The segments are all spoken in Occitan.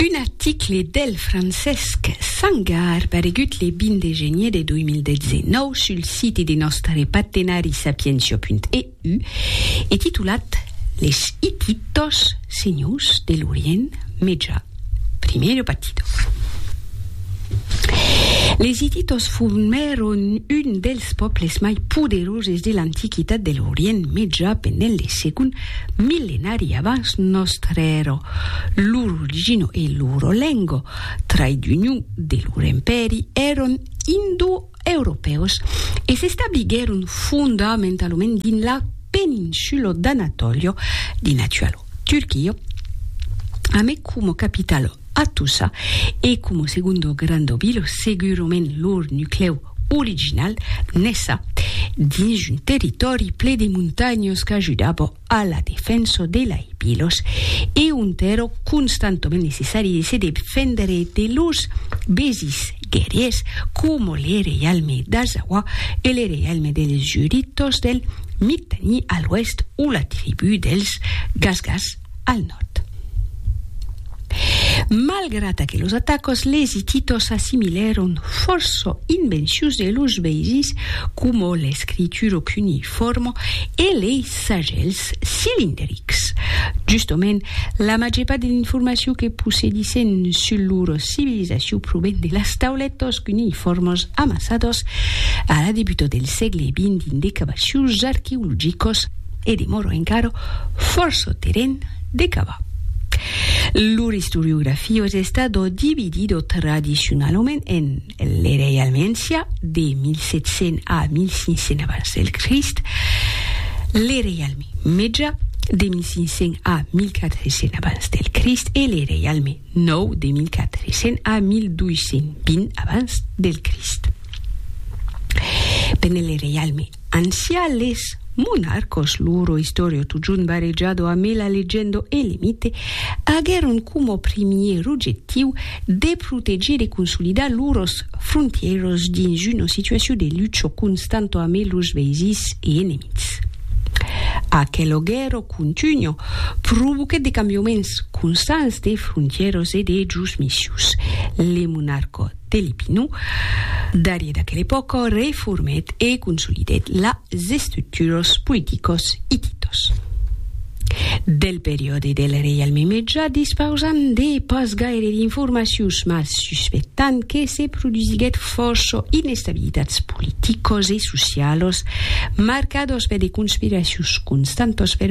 Un article del Francesc Sangar paregut le 20 de genier de 2019 sul siti de nòstare partenari sapientia.eu e titulat Les Hititos, senhors de l'Orient Meja, primero partido. Les Hititos formèron un dels pòbles mai poderoses de l'antiquitat de l'Orient Meja pendent le segon Millenari abans nòstre ero lur origino e luro lengo, trai d'union de lur empèri, eron indoeuropeus e s'establiguèron fondamentalament dins la peninsulo d'Anatolio, dins l'actualo Turquia, ame como capitalo Attusa e como segundo grando vilo, segurament lur nuclèu original nesa dins un territòri ple de montanhas qu'ajudava a la defensa de lai bilos e ont èra constantament necessari de se defendre de los besis guerriers coma le reialme d'Azawa e le reialme dels Juritos del Mittani a l'oèst o la tribu dels Gasgas al nòrd. Malgrat aquelos atacos, les Hititos s'assimilèron fòrça in bençús de los Beizis, coma l'escritura cuneiforma e lei sagèls cilinderics. Justament, la màger part de l'informacion que possedissen sul lor civilizacion proven de las taulètas cuneiformas amassadas a la debuta del sègle xx dins de cavacions arqueologicas, e demòro encara fòrça terren de cavar. Lor istoriografia es estada dividida tradicionalament en l'era Ialmentia, de 1700 a 1500 abans del Crist, l'era Ialme Meja, de 1500 a 1400 abans del Crist, e l'era Ialme Nou, de 1400 a 1220 abans del Crist. Pendent l'era Ialme Ancià les monarcos, loro istòrio totjorn barejado amé la legendo e le mite, aguèron coma primièr ojectiu de protegir e consolidar loros frontièros dins una situacion de lucho constanto amé los veisins e enemics. Aquelo guèrro contunho provoquèt de cambioments constants de frontièros e de josmissions. Le monarco Telipinu, darrier d'aquela epòca, reformèt e consolidèt las estructuras politicas ititas del periòde del reialme Meja, dispausant de pas gaire d'informacions mas suspectant que se produsiguèt fòrça inestabilitats politicas e socialas marcadas per de conspiracions constantas per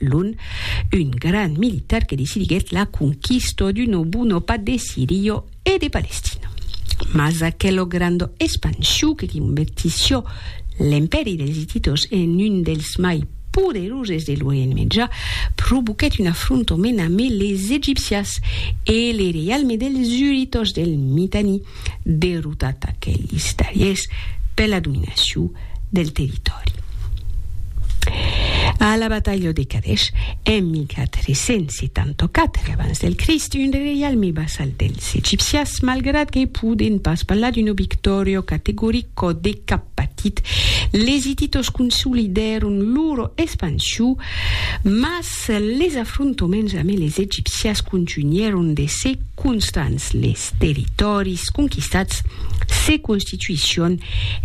Lun, un grand militar que decidiguèt la conquista d'un obuno pas de Sirio e de Palestina. Mas aquelo grando espansiu que convertissió l'empèri dels Hititos en un dels mai poderoses de l'Orient Meja provoquèt un afrontament ame les Egipcias e le reialme dels Huritos del Mitanni, derrotat aquelis darriers per la dominacion del territòri. A la batalha de Kadesh, en 1474 abans del Crist, un reialme vassal dels egipcians, malgrat que poden pas parlar d'una victòria categoric, còde cap patit, les hititos consolidèron lor expansion, mas Se les afrontoments ame les egipcias contunhèron de se constants, les territòris conquistats se constituission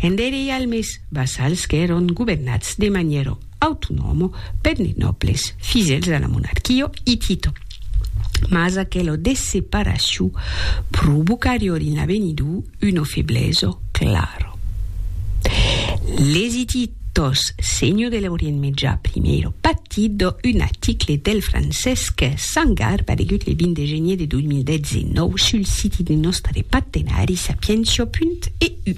en de reialmes vassals qu'èron governats de manièro autonòmo per de nòbles fidèls a la monarquia hitita. Mas aquela desseparacion provocarior in l'avenidor Uno febleso claro. Lesiti Tos Senho de l'Orient Mejà, Primero Pattido, un article del Francesc Sangar paregut le 20 de genier de 2019 sul siti de nòstre partenari sapientia.eu.